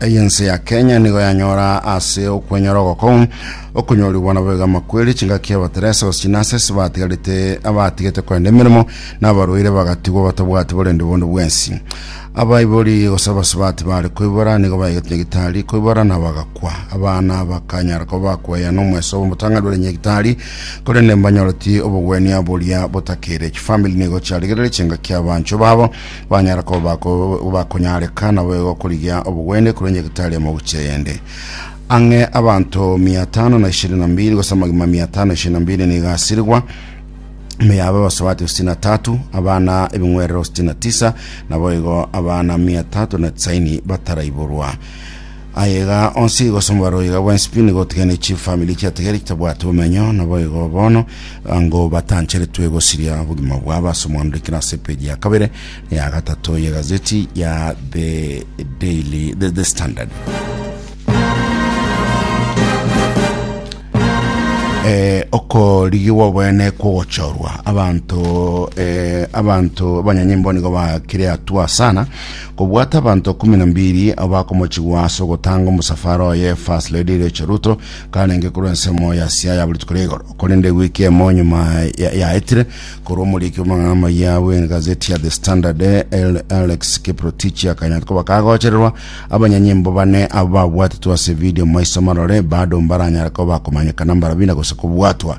Ey'ense ya Kenya nigo yanyora ase okwenyora ogoko okonyorigwa nabo egama kweri chingaki abateresa gose chinase ase batigarete abatigete korenda emeremo na abarwaire bagatigwa batabwati borende bondo bwensi. Abaibori gose abasubati bare koibora nigo baigete nyagitari koibora na bagakwa. Abana bakanyara koba bakweyana omweso bw'omotang'ani bore nyagitari korende mbanyoreti obogwenia boria botakeire. Chifamili nigo chiarigereire chingaki abanchwa babo Banyare koba bakonyareka nabo igo korigia obogwende korwa nyagetari ya moguchi eyende. Ang'e abanto mia tano na ishirini na mbiri gose amagima mia tano na ishirini na mbiri nigo asirigwa mea abe abasubati sitini na tatu abana ebing'werero sitini na tisa nabo igo abana mia tatu na tisaini bataraiborwa Aye iga onsi gosomba roiga bw'ensipi nigo otigane chifamiri chiatigare chitabwate omenyo, naboigo bono ango batancheretwe gosiria obogima bwabo ase omwanurikino ase epeji ya kabere na ya gatato y'egazeti ya The Daily The, The Standard. eh, okorigigwa obwene kwogochorwa abanto eh, abanto abanyanyimbo nigo bakire atua sana kobwata abanto ikomi na mbiri abakomochigwa ase ogotanga omosafara oye First Lady Rachel Ruto karenge korwa ensemo ya Siaya buri tuko rigoro korende wiki emo nyuma ya- yaetire korwa omoriki bw'amang'ana amaya bw'egazeti ya The Standard El- Alex Kiprotich akanya koba kagochererwa abanyanyimbo bane abo babwatetwe ase video maiso marore bado mbaranyare koba komanyekana mbarabina gose kobwatwa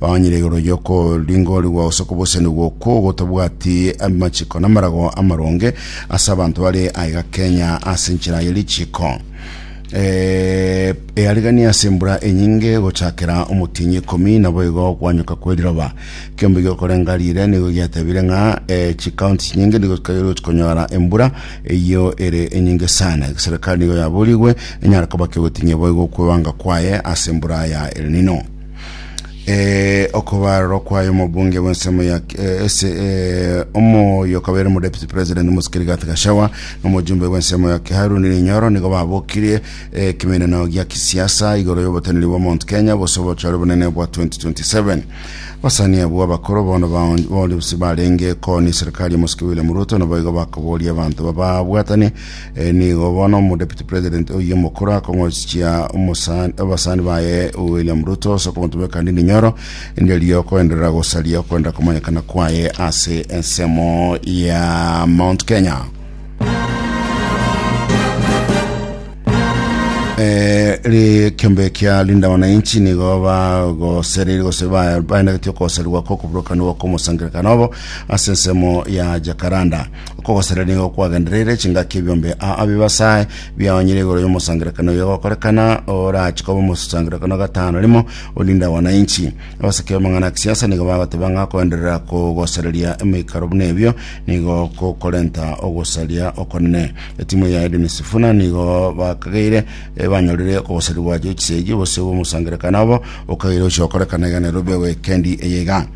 Baonyire igoro y'okoringorigwa gose okobosanigwa okwo gotabwati amachiko n'amarago amaronge ase abanto bare aiga Kenya ase enchera ye richiko eh, earigania ase embura enyinge gochakera omotienyi ikomi naboigo okwanyoka kw'eriroba. Kiombe gi'okorenga riire nigo giatebire ng'a eh, chikaunti chinyinge nigo chikairu chikonyora embura eyio ere enyinge sana. Egeserikari nigo yaborigwe enyare koba kegotinyia boigo okwebanga kwaye ase embura ya El Nino. Eh, okobarorwa kwaye omobunge bw'ensemo ya eh, ese eh, omoyo okabeire mu deputy president omosikiri gati gashawa nomojumbe bw'ensemo ya haruni rinyoro nigo babokirie eh, kimeneno gia kisiasa igoro y'oboteneri bwa mount kenya bose obochore bonene bwa 2027 basani abwo abakoro bono baonsi barenge koni serikali ya mosiki william ruto nabo igo bakoboria abanto bababwatani Eh, nigo bono omudeputy president oye omokoro akong'ochia omosani- abasani baye william ruto ase okomotumeka kandi ninyoro nderio okoenderera gosaria okwenda komanyekana kwaye ase ensemo ya mount kenya Eh, ri kiombe kia linda wananchi nigo bagoserire gose ba- baendagetie okoserigwa kwa okuburokanigwa kwa omosangerekano obo ase ensemo ya jakaranda Okogosera nigo kwagendereire chingaki ebiombe aa bibasae biaonyire igoro y'omosangerekano oyo gokorekana orache koba omosangerekano gatano rimo orinde wananchi. Abaseke b'amang'ana ya kisiasa nigo bagoteba ng'a koenderera kogosereria emoikaro buna ebio nigo gokorenta ogosaria okonene. Etimu ya Edwin Sifuna nigo bakageire eh, banyorire okogoserigwa gwa George Seigi obosio bw'omosangerekano obo okageire gochia gokorekana iga Nairobi weekendi eye iga.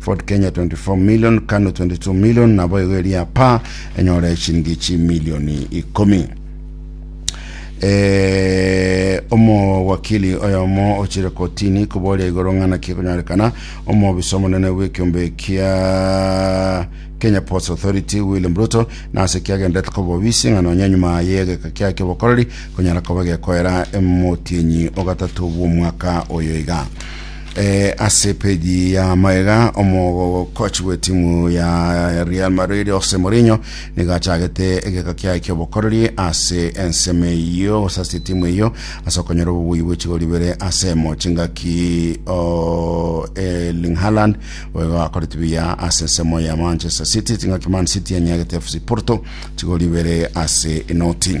Ford Kenya 24 million, Kanu 22 million, naboigo eria pa enyore chiringi chimilioni ikomi. Eh, omowakili oyomo ochire kotini koboria igoro ng'ana kekonyorekana omobisa omonene bw'ekiombe kia Kenya Ports Authority William Ruto nase kiagenderete koba obisi ng'a nonya nyuma y'egeka kiaye ki'obokoreri konyara koba gekoera emotienyi ogatatu bw'omwaka oyo iga Eh, ase peji ya maega omokochi bw'etimu ya Real Madrid Jose Mourinho nigo achagete egeka kiaye ki'obokoreri ase ensemo eyio gose ase etimu eyio ase okonyora obobui bw'echigori ibere ase emo chingaki o Erling Haaland oigo akoreti buya ase ensemo ya Manchester City chingaki Man City enyagete FC Porto chigori ibere ase inoti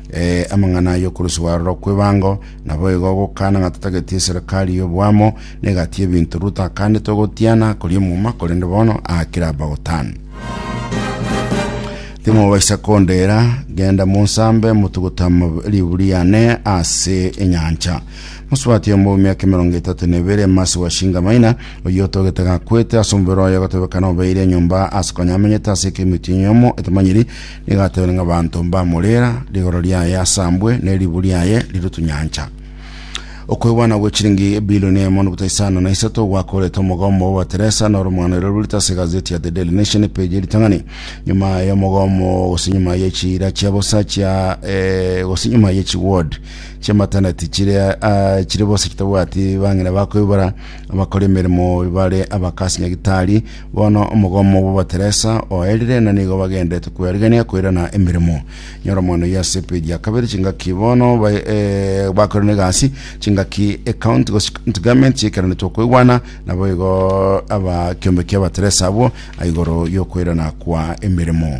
Ee, amang'ana y'okoruswa aroro kw'ebango, naboigo ogokana ng'a totageti eserikari y'oboamo, negati y'ebinto Ruto akande togotiana koria omoma, korende bono aakire abagotana. Timobaisa kondera, genda monsambe motuguta liburi yane ase enyancha. Mosubati omo miaka emerongo etato na ebere masi wa Shingamaina, oyio otogete gakwete ase omobere oye gotebekana obeire enyomba ase konya amenyete ase ekemitio enyomo etamanyiri Nigatebire ng'a abanto mbamorera, rigoro riaye asambwe, ne ribu riaye rirutwe nyancha. Okwegwana gwe chiringi ebilioni emo nobuta isano na isato gwakorete omogomo obo Teresa na oromwana ero rurite ase egazeti ya The Daily Nation epeji ya ritang'ani nyuma ya omogomo gose nyuma ya echiira chia bosa chia eh, gose nyuma ya echiward chia maternity chire ah, chire bosa chitabwati bang'ina bakoibora abakora emeremo bare abakasi nyagitari Bono omogomo bw'Abateresa oerire, na nigo bagendete kwerigania koirana emeremo. Nyoromono ya sepedi ya kabere chingaki bono ba- eh, bakorire negasi chingaki account gose account garment chiaikeranetwe okoigwana nabo igo aba kiombe kia Abateresa abwo aigoro y'okoirana kwa emeremo.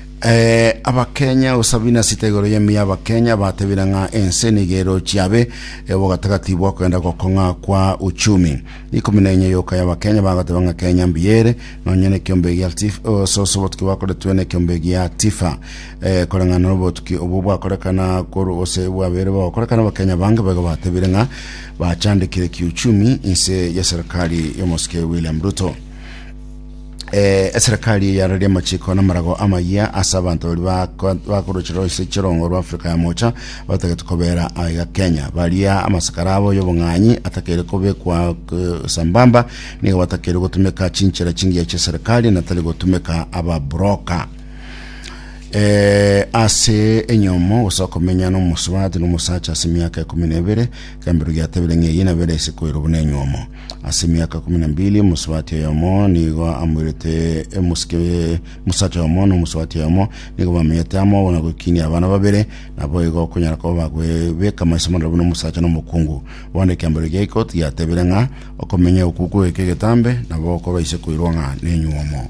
Eh, abakenya usabina sita igoro yemi abakenya batebire ng'a ense niga erochi abe eh, bogatagati bwakogenda gokong'a kwa uchumi ikumi na enye yoka y'abakenya bagateba ng'a kenya mbiyere nonye na ekiombe gia tif oh, soso obotuki bakoretwe na ekiombe gia tifa eh, koreng'ana na obotuki obo bwakorekana koru ose bwabere bagokorekana abakenya bange baigo batebire ng'a bachandekire kiuchumi inse ya serikali y'omosike william ruto Eh, eserekari eyararia amachiko na amarago amayia ase abanto bari bako- bakorocherwa ase chirongo rwa Afrika ya mocha batagete kobera aiga Kenya. Baria amasakara abo y'obong'anyi atakeire kobekwa eh, sambamba nigo batakeire gotumeka chinchera chingiya chi'eserekari natari gotumeka ababuroka. Eh, ase enyomo gose okomenya n'omosubati n'omosacha ase emiaka ekumi na ebere kembero giatebire ng'a eye nabere ase koirwa buna enyomo Ase emiaka ikomi na mbili omosubati oyomo nigo amoirete emosike mosacha oyomo na omosubati oyomo nigo bamenyete amo na gokinia abana babere naboigo okonyara koba bagwebeka amaiso maroro buna omosacha na omokungu bono ekiambero gia ikoti giatebire ng'a okomenya okuku goika egetambe nabo okobaise koirwa ng'a nenyuomo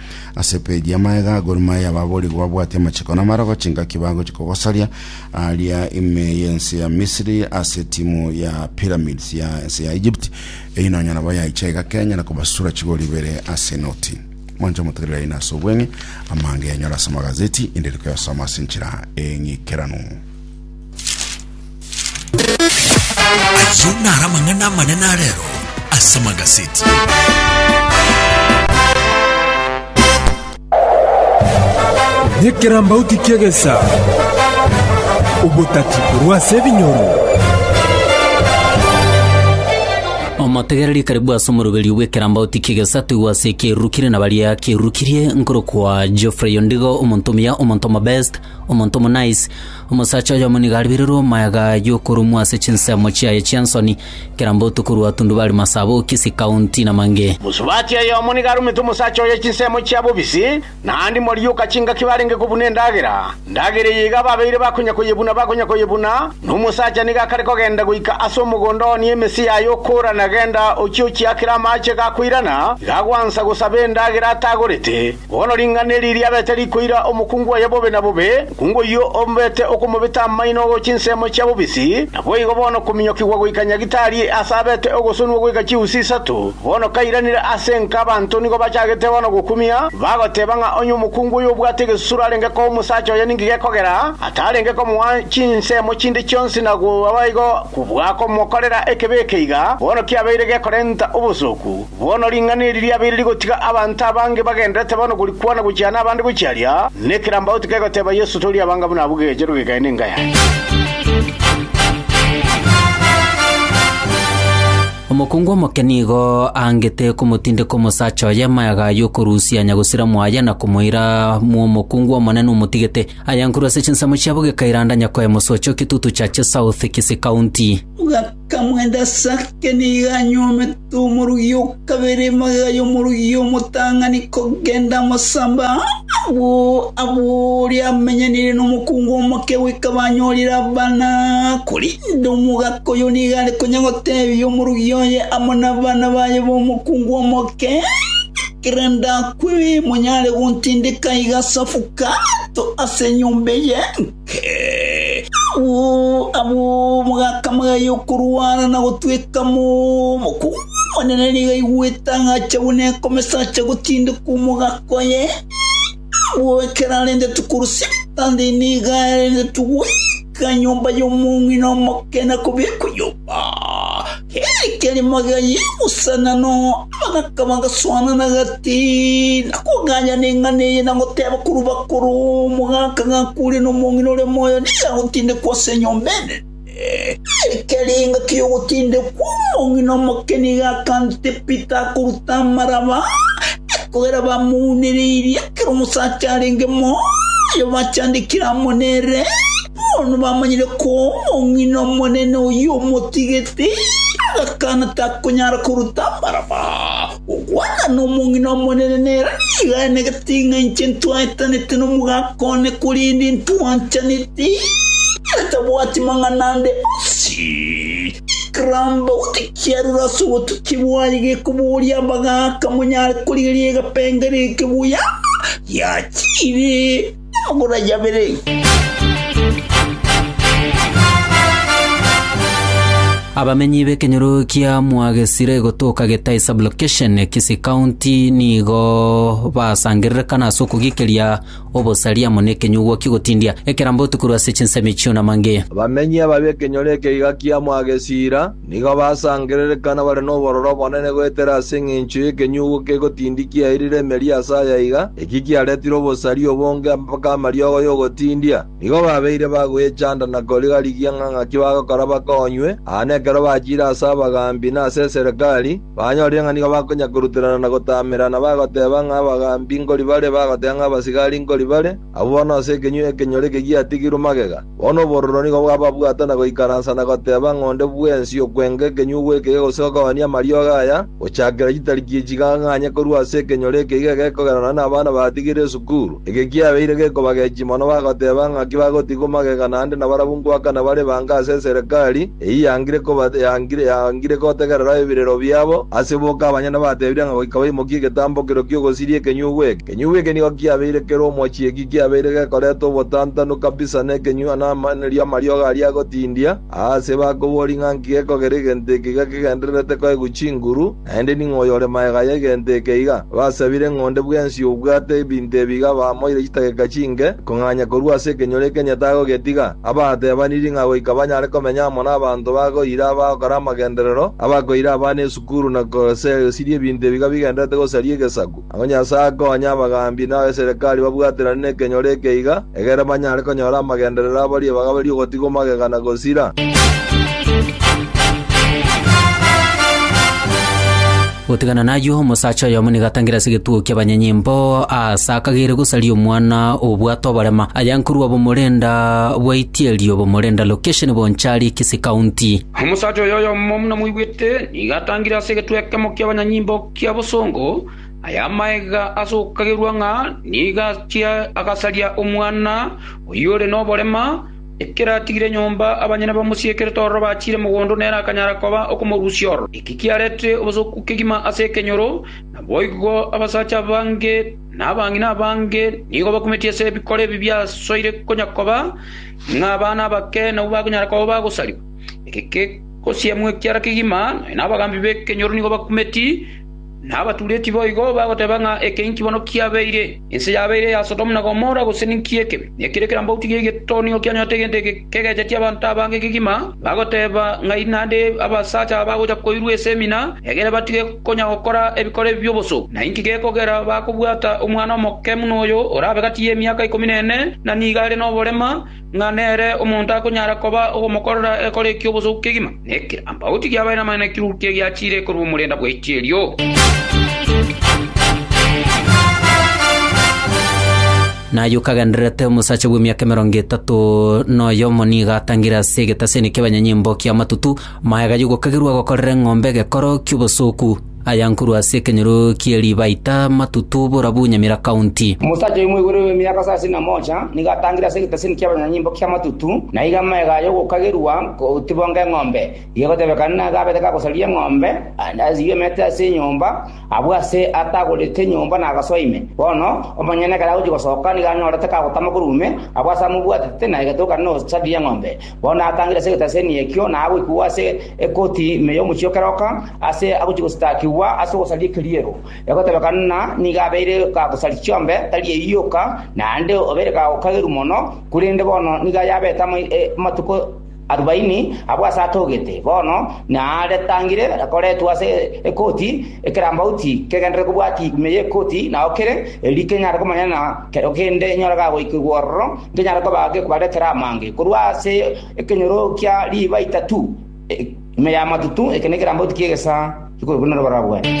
Ase epeji ya Maega, Gor Mahia baborigwe babwate amachiko namarogo chingaki bagochia kogosaria aria ime y'ense ya Misiri ase timu ya Pyramids ya ense ya Egypt eyi nonya nabo yaicha iga Kenya na kobasura chigori ibere ase enoti. Mwancha motegerere aina ase obweng'e amanga yanyora ase amagazeti inde riko yasoma ase enchera eng'ikeranu. Ayio naro amang'ana amanene arero ase magaseti. Nyekirambauti ki'egesa, obotati korwa ase ebinyoro. omotegereri karibu ase omoroberio bw'ekerambauti ki'egesa toigwe ase ekerurukire na baria akerurukirie nkorokwa Geoffrey Ondigo omonto omuya omonto omobest omonto omonice Omosacha oyomo nigo aribirirwe omoyaga y'okorumwa ase chinsemo chiaye chi'ensoni, kera mbotuko rwatundubari masabo, kisi, kaunti, na mange. Mosubati oyomo nigo arumete omosacha oye chinsemo chia bobisi, naende moriuka chingaki barenge kobuna endagera, ndagera eye iga ababeire bakonya koyebuna bakonya koyebuna, na omosacha nigo akare kogenda goika ase omogondo one emesi yaye okora na genda ochie ochiakere amaache gakoirana, iga gwansa gosaba endagera atagorete. Bono ring'ana eri riabete rikoira omokungu oye bobe na bobe, mokungu oyio ombete okomobeta amaino oo chinsemo chia bobisi, naboigo bono kominyokigwa goika Nyagitari aase abete ogosonigwa goika chiusi isato. Bono kairanire ase enka abanto nigo bachagete bono gokumia, bagoteba ng'a onye omokungu oyo obwate egesusuro arenge koa omosacha oye ninki gekogera, atarenge komoa chinsemo chinde chionsi na goa boigo kobua komokorera ekebe eke iga bono kiabeire gekorenta obosooku. Bono ring'ana eri riabeire rigotiga abanto abange bagendererete bono korikwana gochia nabande gochia aria, na ekerambauti kegoteba Yeso tori abanga buna abwo gegecherwe gegae nenga yaye. Omokungu omoke nigo aangete komotindeka omosacha oye mayaga y'okorusia nyagusira mwaye na komoira mw'omokungu omonene omotigete. Ayankurwe ase chinsemo chiabo gekairanda Nyakoe Mosocho, Kitutu Church South, Kisii County. Kamwende as'ake nigo anyuomete omorogia o kabere magega y'omorogia omotang'ani kogenda amasamba agwo agwo oria amenyanire nomokungu omoke goika banyorire abana. Korende omogaka oyo nigo are konya gotebia omorogia oye amo nabana baye bomokungu omoke, Ekero ndakwe monyare gontindeka iga as'obukato as'enyomba eye. Abwo mogakamagaya y'okorwana na gotweka mokongu omonene nigo aigwete agacha buna ekomesacha gotindekwa omogaka oye. Abwo ekero arenge tokorusia ebitanda nigo arenge togoika nyomba y'omong'ina omoke na kobiekwa nyomba. Ekerimo giayeguusana, na abagaaka bagaswaanana gati, na kogaanyana eng'ana eye, na goteeba korwa bakoro, Omogaaka gakuure, na omong'ina ore moyo nigo agotindekwa ase enyomba enene. Ekerenga ki'ogotindekwa omong'ina omoke nigo akantete Pita akoruta amaraba, ekogera bamouneirie ekero omosacha arenge moyo bachandekire amo nere. Bono bamanyire koa omong'ina omonene oyio omotigete, agakana takonyara koruta amaraba. Ogwana nomong'ina omonene nere nigo anegete ng'a inche ntwaetanete nomogaka one, korende ntwanchanete, atabwati mang'ana ande onsi. Ekeramba gose kiarure ase obotukia bwaye gekoboria abagaaka monyare korigereria egepengerio eke buya giachire. Amagoro ayio abere. Abamenyi b'ekenyoro kia Mwagesire gotoka Getai Sub-location, Kisii County nigo basangererekana ase okogikeria obosaria amo nekenyugwa ki'ogotindia ekerambotu korwa ase chinsemi chi'onamange. Abamenyi aba b'ekenyoro eke iga kia Mwagesira Nigo basangererekana bare nobororo obonene goetera ase engencho y'ekenyugu kegotindi kiairire emeri ase aya iga, eki kiaretire obosari obonge mpaka amariogo y'ogotindia. Nigo babeire bagoyechanda na koriga-rigia ng'a ng'aki bagokora bakonywe, aa nekero bachiire ase abagaambi na ase eserekari, banyorire ng'a nigo bakonya-koruterana na gotamerana, bagoteba ng'a abagambi nkori bare, bagoteba ng'a abasigari nkori bare, Abwo bono ase ekenywa ekenyore eke giatigirwe magega, bono obororo nigo bwababwata na goikaransa na goteba ng'a onde bwensi okwenga ekenywa ogwekega gose ogokabania amariogo aya, gochakera chitariki echi gang'anye korwa ase ekenyore eke iga egekogera nonya nabana batigire esukuru. Eke kiabeire gekobagechia mono bagoteba ng'aki bagotigwa magega naende nabarabwo ngoakana bare ebange ase eserekari eyio yangire koba yangire gotegerera ebirero biabo ase boka abanyene batebirie ng'a goika baimokie egetambokero ki'ogosiria ekenywa ogwekega. Ekenyugwa eke nigo kiabeire kere omochiiki, kiabeire gekoreta obotantanu kabisa nekenyugwa namaenerio amariogo aria agotindia. Aase bakobori ng'a nki gekogera egento eke iga kegendererete koegwa chinguru, naende ning'o oyore magega y'egento eke iga? Basabire ng'a onde bwensi obwate ebinto ebi iga bamoire chitageka chinke kong'anya korwa ase ekenyoro ekenye tagogetiga. Abatebaniri ng'a goika banyare komenya amo nabanto bagoira abagokora amagenderero, abakoira abana esukuru na gosiria ebinto ebi iga bigendererete gosaria egesaku. Agwo Nyasae akonye abagaambi na abeserekari babwaterane nekenyoro eke iga, egere banyare konyora amagenderero a baria bagaberie ogotigwa magega na gosira. Gotigana nayio, omosacha oyomo nigo atangire ase egetugo ki'abanyanyimbo, aase akagera gosaria omwana obwate oborema, aya nkorwa Bomorenda bwa Itierio, Bomorenda Location, Bonchari, Kisii County. Omosacha oyo oyomo buna moigwete, nigo atangire ase egetugo ekemo ki'abanyanyimbo, kia bosongo, aya amaega ase okokagerwa ng'a nigo achia agasaria omwana oyio ore noborema, ekero atigire nyomba abanyene bamosiekerete ororo bachiire mogondo na ere akanyara koba okomorusia ororo. Eki kiarete obosooku kegima ase ekenyoro, naboigo abasacha abange na abang'ina abange nigo bakumeti ase ebikoro ebi biasoire konya koba ng'a abana abake nabwo bakonyara koba bagosariwa. Gosiemwa ekiara kegima, nonya nabagambi b'ekenyoro nigo bakumeti, na abatureti boigo bagoteba ng'a eke inki bono kiabeire? Ense yabeire eya Sodomu na Gomora, gose ninki eke? Nekere kerambauti gie geto nigo kianyorete egento eke kegecheti abanto abange kegima, bagoteba ng'ai naende abasacha aba bagocha koirwa ase emina, egere batige konya gokora ebikoro ebi bi'oboso? Na inki gekogera bakobwata omwana omoke buna oyo, orabe gati y'emiaka ikomi na ene, na nigo are noborema? Ng'a nere omonto akonyara koba ogomokorera ekore eki'obosuku kegima, na ekirambauti gi'abaene amang'ana ekirurukia egiachiire korwa omorenda bw'eichi erio? Naye okagendererete omosacha bw'emiaka emerongo etato noyomo nigo atangire ase egetaseni ki'abanyanyimbo ki'amatutu, magega y'ogokagerwa gokorera eng'ombe egekoro ki'obosuku. Aya nkorwa ase ekenyoro kie Ribaita, Matutu, Borabu, Nyamira County. Omosacha oyo moigoro bw'emiaka sasini na mocha nigo atangire ase egeteseni ki'abanyanyimbo kia Matutu, na iga amagega aye ogokagerwa kotibwa ng'eng'ombe. Gegotebekana nigo abete gagosaria eng'ombe, naende asibie emete ase enyomba, abwo ase atagorete enyomba nagasoa ime. Bono omonyene ekero agochia gosoka nigo anyorete kagotama korwa ime, abwo ase amobwatete, na egetokana nogosaria eng'ombe. Bono atangire ase egetaseni ekio, na agoikigwa ase ekoti ime y'omochie o keroka, aase agochia gosatakigwa ase ogosaria ekeriero. Egotebekana ng'a nigo abeire kagosaria chiombe, tari eyio yoka, naende obeire kagokageru mono, korende bono nigo ayabete amatuko arubaini abwo aase atogete. Bono naretangire akoretwe ase ekoti ekerambauti kegenderere kobwati ime y'ekoti nao kere, erio kenyare komonyana Kero kende enyora gagoikigwa ororo, nkenyare kobaa gekobaretera amange korwa ase ekenyoro kia riiba itato, ime y'amatutu, eke nekerambauti ki'egesaa gikorokwa norobara rwane.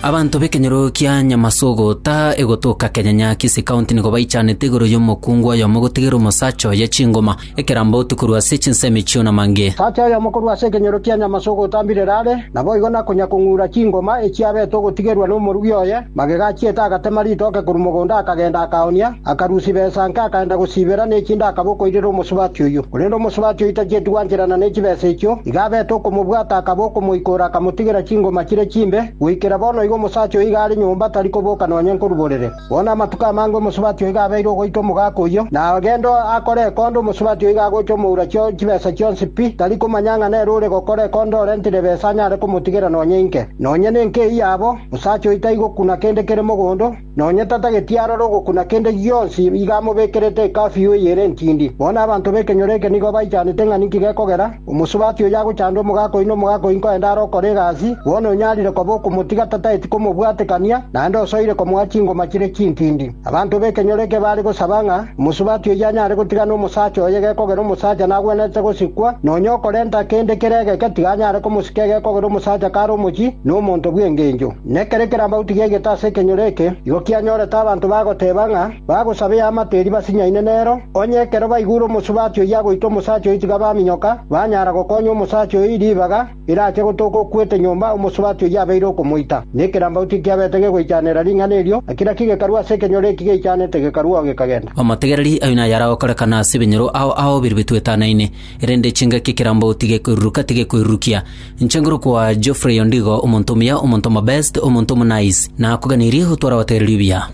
Abanto b'ekenyoro kia Nyamasuguta egotoka Kenyanya Kisii County nigo baichanete igoro y'omokungu oyomo gotigera omosacha oye chingoma. Ekerambe otu korwa ase chinsemi chio na mange. Tata oyomo korwa ase ekenyoro kia Nyamase ogotambirera are, naboigo nakonya kong'ura chingoma echiabete ogotigerwa nomorugi oye, magega achiete agatema ritoke korwa mogondo akagenda akaonia, akarusia besanke akaenda gosibera nechinde akaba okoirera omosubati oyio. Korende omosubati oyio tachieti gwancherana nechibesa echio, iga abete okomobwata akaba okomoikora akamotigera chingoma chire chimbe, goikera bono igo omosacha oyo iga are nyomba tari koboka nonya nkoruborere. Bono amatuko amange omosubati oiga abeire ogoita omogaka oyio, na agende akore ekondo omosubati oiga agocha omoura chio chibesa chionsi pi, tari komanya ng'a nere ore gokora ekondo orentire ebesa anyare komotigera nonya inke. Nonya nenke eyio abo, osacha oyio taigokuna kende kere mogondo, nonya tatageti aroro ogokuna kende gionsi iga amobekerete ekafiu eye ere entindi. Bono abanto b'ekenyoro eke nigo baichanete ng'a ninki gekogera, Omosubati oyo agochanda omogaka oyi nomogaka oyi nkorende are okora egasi, bono onyarire koba okomotiga tataeti komobwatekania, naende osoire komoa chingoma chire chintindi. Abanto b'ekenyoro eke bare gosaba ng'a omosubati oyio anyare gotigana omosacha oye gekogera omosacha nagwenerete gosikwa, nonya okorenta kende kere egeke tiga anyare komosika egekogera omosacha kare omochie nomonto bw'engencho. Nekere kerambagu tiga egete ase ekenyoro eke, igo kianyorete abanto bagoteba ng'a, Bagosaba eamate eria basinyaine nero, onye ekero baigure omosubati oyio agoita omosacha oyo tiga baminyoka, banyara gokonya omosacha oyo ribaga erache gotoka okwete nyomba omosubati oyio abeire okomoita. Na ekerambagu tikiabete gegoichanera ring'ana erio, ekira kigekarua ase ekenyoro eki geichanete gekaruao gekagenda. Omotegereri, aye naye aragokorekana ase ebinyoro ao ao biria bitwetanaine. Erinde chingaki ekerambo tigekoiruruka, tigekoirurukia. Inche ngorokwa Geoffrey Ondigo, omonto omuya, omonto omobest, omonto omonaice. Nakoganirie gotwara abategereri obuya.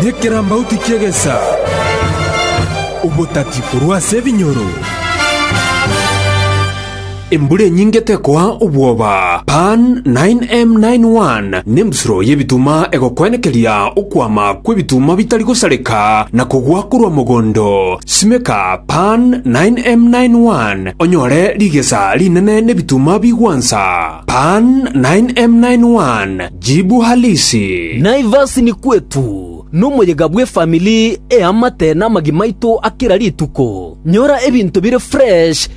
Nekerambauti ki'egesa, obotati korwa ase ebinyoro. Embura enyinge tekoa obwoba. Pan. 9M 91, Nembusuro y'ebituma egokwenekeria okwama kw'ebituma bitari gosareka na kogwa korwa mogondo. Simeka Pan. 9M 91 onyore rigesa rinene n'ebituma bigwansa. Pan. 9M 91, Jibu Halisi. Naivas ni kwetu, nomoyega bw'efamili eamate namagi maito a kera rituko. Nyora ebinto bire fresh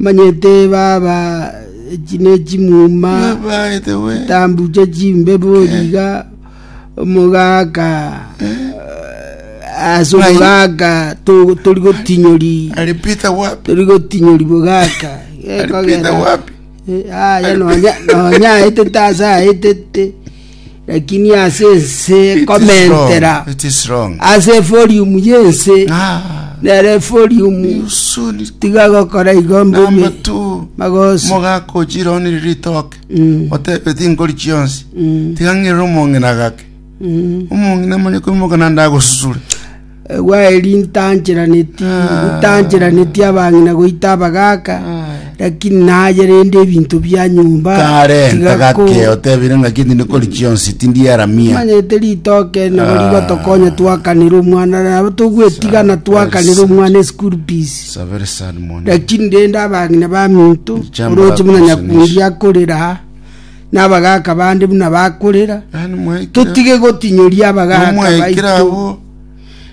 Omanyete baba echi ne chimuma chitambuche chimbebo riga omogaka ase omogaka to- tori gotinyori Ali Peter wapi? tori gotinyori bogaka Alipita wapi? aya nonya nonya aetete ase aetete Lakini ase ense It is ekomentera wrong. It is wrong. ase eforium y'ense Ah, nere eforium you soon it- tiga gokora igo number mbume two. magoso mogakojira onire ritoke Mm, otebe tingori chionsi mm, tigang'irira omong'ina gake mm. omong'ina manye koimoka nande agosusure Egwa eri ntancheraneti, ntancheraneti abang'ina goita abagaaka, lakini naye rende ebinto bia nyomba Karenta tiga ko- gake otebire ng'aki tindi kori chionsi tindiaramia. manyete ritoke nabo rigotokonya twakanera omwana nabo togwetigana twakanera omwana eschool fees It's a very sad morning. lakini rende abang'ina baminto Richambura oroche buna kusenesi. nyakundi akorera nabagaaka bande buna bakorera, Nani mwaikire? totige gotinyoria abagaaka Nomwaikire baito. abwo.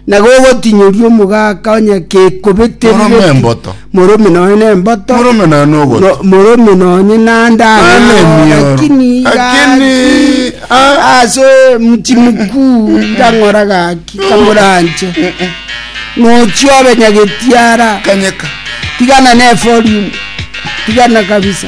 na gogotinyoria omogaka onye kekobeterire Morome emboto. morome nonye na emboto Morome naye nogoto. no- morome nonye nande Nane emioro. lakini Lakini, ah. ase mti mkuu irang'ora gaki kamoranche nochia obe nyagetiara Kanyeka. tigana ne folium tigana kabisa